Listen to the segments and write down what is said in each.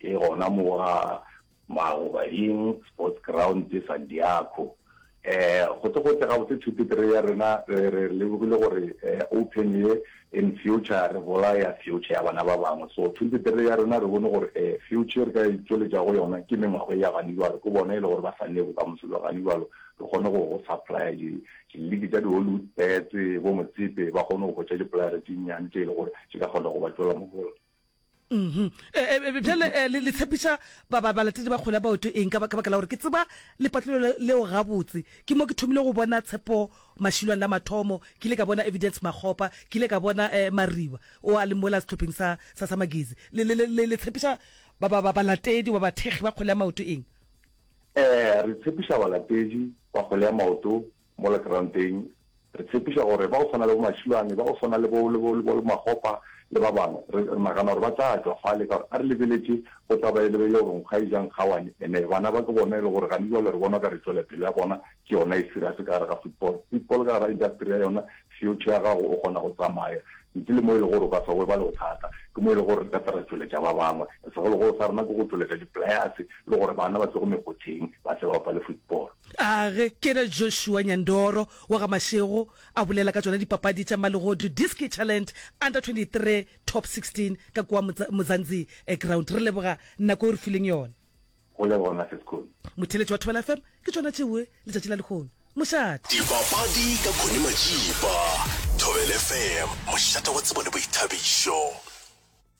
E gona mo wa Magobading Sports Ground, Sandiaco. Gotlegotle gabotse two to three ya rena re re lebogile gore Open ye in future re bolaya future ya bana ba bangwe. So two to three ya rena re bone gore future e re ka itšweletša go yona ke mengwago ya gane bjalo, ke bona e le gore ba sa ne bokamoso bja gane bjalo re kgone go go supplier di di league tša di Hollywood Bets, bo Motsepe ba kgone go hwetša di playere tše nnyane tše e le gore tše ka kgona go ba tšwela mohola. bjale eh, le tshepiša balatedi ba kgole baoto eng ka baka la gore ke tseba lepatlelo leo gabotse ke mo ke thomile go bona tshepo mašilwane la mathomo ke ile ka bona evidence makgopa ke ile ka bona um mariba o a le mola setlhopheng sa sa magezi le tshepiša balatedi ba bathekgi ba kgole ya maoto eng um re tshepiša balatedi ba kgole ya maoto Mola Keranteng, re tshepiša gore ba go swana le bo Mašilwane, ba go swana le bo, le bo, le bo Makgopa le ba bangwe, re, re nagana gore ba tla tšwa fale, ka gore a re lebeletše, go tla ba e le, e le gore nkgo a e ja nkgawane, ene bana ba ke bona e le gore gane jwale re bona o ka re tšwelepele ya bona ke yona e serious ka gare ga football. Football ka gare ga industry ya yona, future ya gago o kgona go tsamaya, ntle le mo e le gore o ka se gobale go thata, ke mo e le gore re ka tla ra tšweletša ba bangwe, segologolo sa rena ke go tšweletša di players le gore bana ba tšwe go mekgotheng ba tle ba bapale football. A ge ke re Joshua Nyandoro wa ga Mashego a bolela ka tšona dipapadi tša Mmalegodu Diski Challent Under 23 Top 16 ka kua Mzanzi Ground. Re leboga nako e o re fileng yona. Go leboga Massive Khune. Motheletši wa Thobela FM ke tšona tšeue letšatši la lehono. Mošate. Dipapadi ka Khune Matšipa. Thobela FM, mošate wa tsebo le boithabišo.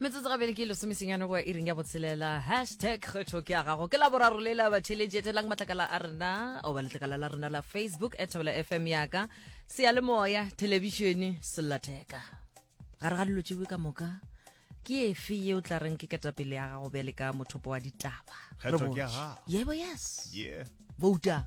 metsotso gabedi ke lesomesenyane go ya iring ya botshelela hashtag kgetho ke ya gago ke la boraro le la batheletši etelang matlakala a rena oba letlakala la rena la facebook e thabela fm yaka seyalemoya thelebišene sellatheka gare ga dilo tšewe ka moka ke efe ye o tla reng ke ketapele ya gago bjale ka mothopo wa ditaba yebo yes bouta